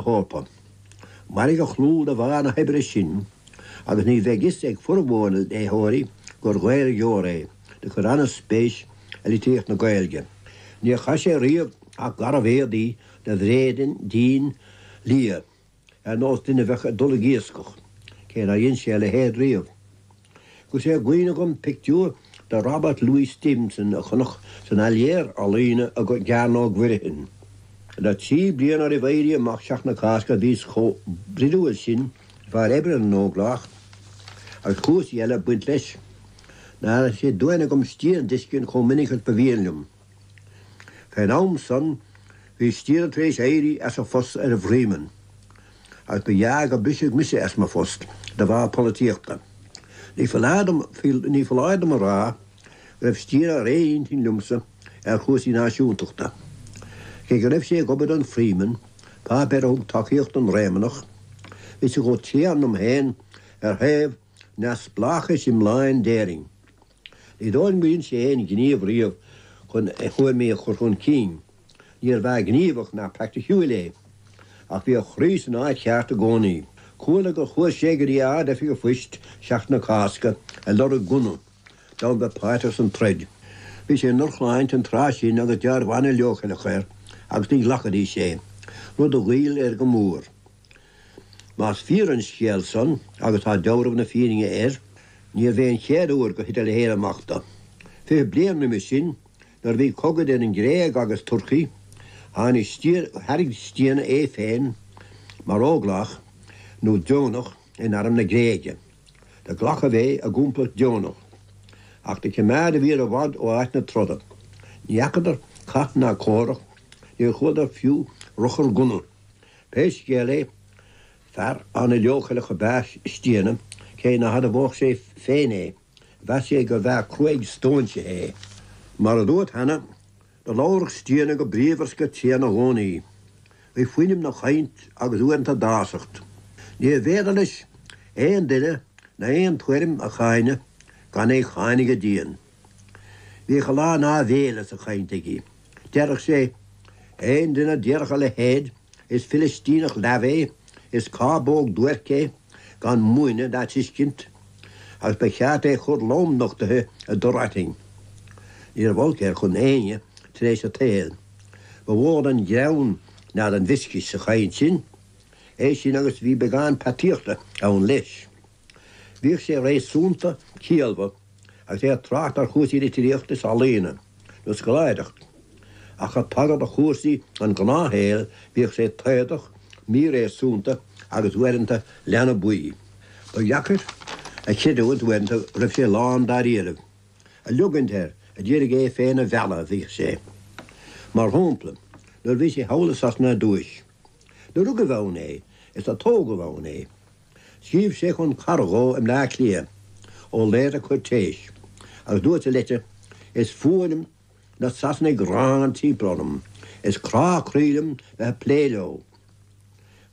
hEorpa. Mairfidh a chlú de bharr na hoibre sin agus ní bheidh 'fhios ag formhór na léitheoirí gur Ghaeilgeoir é, do chuir an-spéis i litríocht na Gaeilge. Níor chaith sé riamh ach garbh-éadaí de bhréidín liath, ar nós duine a bheadh ag dul ag iascach, cé nár dhein sé a leithéid riamh. Agus é i gcuimhne agam pictiúr de Robert Louis Stevenson a chonac san Áiléar Ealaíne i gCearnóg Mhuirfean. Le trí bliana roimh Éirí Amach Seachtain na Cásca bhíos chomh broidiúil sin de bharr oibre na nÓglach, agus cúrsaí eile ag baint leis, nár fhan sé d'uain agam Stiabhna d'fheiscint chomh minic is ba mhian liom. Fén am san bhí Stiabhna tar éis éirí as a phost ar an bhFreeman, agus ba ghearr gur briseadh mise as mo phost de bharr polaitíochta. Ní foláir dom, ní foláir dom a rá go raibh Stiabhna ar aon intinn liomsa ar chúrsaí náisiúntachta. Cé go raibh sé ag obair don Freeman, páipéar a thug tacaíocht don Réamonnach, bhí sé chomh tréan liom féin ar thaobh neamhspleáchais iomláin d'Éirinn. Ní dóigh liom gur dhein sé aon ghníomh riamh chun a thuairimí a chur chun cinn. Níorbh fhear gníomhach ná praiticiúil é. Ach bhí a chroí san áit cheart i gcónaí. Chuala gur chuaigh sé go dtí Ard-Oifig an Phoist Seachtain na Cásca ag lorg gunna, d'fhonn bheith páirteach san troid. Bhí sé i ndrochshláinte an tráth sin agus deabhramh an-leochaileach air agus ní ghlacfaidís é, rud a ghoill air go mór. Más fíor an scéal san, agus tá deabhramh na fírinne air, níorbh é an chéad uair gur thit a leithéid amach dó. Fiche bliain roimis sin, nuair a bhí cogadh idir an Ghréig agus Turcaí, tháinig Stiabhna, thairg Stiabhna é féin mar óglach, nó deonach, in arm na Gréige. Do glacadh é i gcomplacht deonach. Ach do chimeád a bhfir i bhfad ó áit na troda. Ní fheacadar cath ná comhrac, níor chualadar fiú ruchar gunna. Pé scéal é, fear an-leochaileach ab ea Stiabhna, cé ná hadmhódh sé féin é. Mheas sé gurbh fhear cruaidh stóinsithe é. Mar a dúirt cheana, do labhradh Stiabhna go bríomhar 's go tréan i gcónaí. Bhí fuinneamh 'na chainnt agus uaireanta dásacht. Níor bhféidir leis aon duine ná aon tuairim a cháineadh gan é cháineadh go dian. Bhíodh a lán áibhéile sa chaint aige. Deireadh sé, Aon duine a déarfadh a leithéid, is Filistíneach leamh é, is cábóg duairc é, gan múineadh ná tuiscint, agus ba cheart é a chur lom nochtaithe i dtor aitinn. Ní raibh olc air chun éinne tar éis a tsaoil. Ba mhó den ghreann ná den mhioscais sa chaint sin, é sin agus bhí beagán peataíochta ann leis. Bhíodh sé réasúnta ciallmhar agus é ag trácht ar chúrsaí litríochta is ealaíne nó scoláireachta, ach ag tagairt do chúrsaí an ghnáthshaoil bhíodh sé taodach, míréasúnta agus uaireanta leanbaí. Ba dheacair a chreidiúint uaireanta go raibh sé lán dáiríribh. Ag leogaint air a d'iarraidh é féin a mhealladh, a bhíodh sé. Mar shampla, nuair a bhí sé thall i Sasana ar dtúis. Nuair a rugadh ann é is a tógadh ann é. Scríobh sé chun carad dó i mBleá Cliath ó Laoire Cuirtéis agus dúirt sa leitir, 'Is fuath liom na Sasanaigh gránna timpeall orm, is crá croí liom bheith ag plé leo.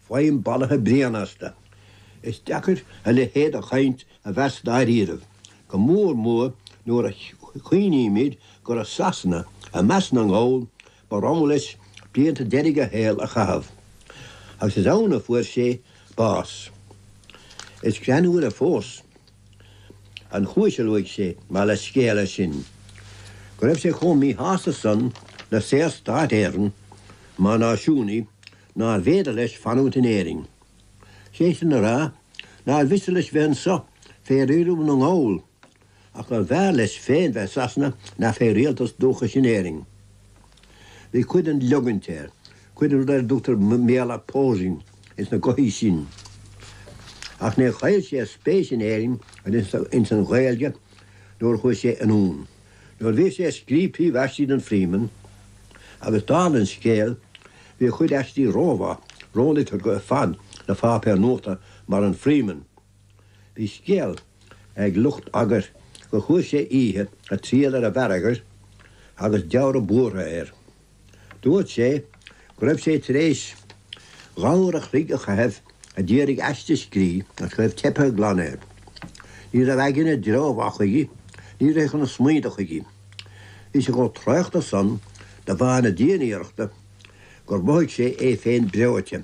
Faighim balaithe bréan astu. Is deacair a leithéid de chaint a mheas dáiríribh, go mór mór nuair a chuimhnímid gur i Sasana, i measc na nGall, Ba rogha leis blianta deiridh a shaoil a chaitheamh agus is ann a fuair sé bás. Is greannmhaire fós an chúis a luaigh sé mar leathscéal leis sin, go raibh sé chomh míshásta san le Saorstát Éireann mar náisiúnaí nárbh fhéidir leis fanúint in Éirinn. Sé sin le rá nár mhiste leis bheith anso fé riaradh na nGall Ach gurbh fhearr leis féin bheith i Sasana ná fé rialtas dúchais in Éirinn. Bhí cuid den leogaint air, cuid den rud ar a dtugtar i mBéarla, posing, ins na gothaí sin. Ach níor chaill sé a spéis in Éirinn agus ins an Ghaeilge nuair a chuaigh sé anonn. Nuair a bhí sé ag scríobh príomhaistí don Freeman, agus dála an scéil, bhí a chuid aistí rómhaith, róliteartha ar fad do pháipéar nuachta mar an Freeman. Bhí scéal ag lucht eagair gur chuaigh sé oíche ag triall ar an bhfear eagair agus dealramh buartha air. Dúirt sé go raibh sé tar éis dhá uair a chloig a chaitheamh a d'iarraidh aiste a scrí agus go raibh teipthe glan air. Ní raibh a aigne i dtreo mhaith chuige, ní rithfeadh na smaointe chuige. Bhí sé chomh traochta san de bharr na dianiarrachta gur mhothaigh sé é féin breoite.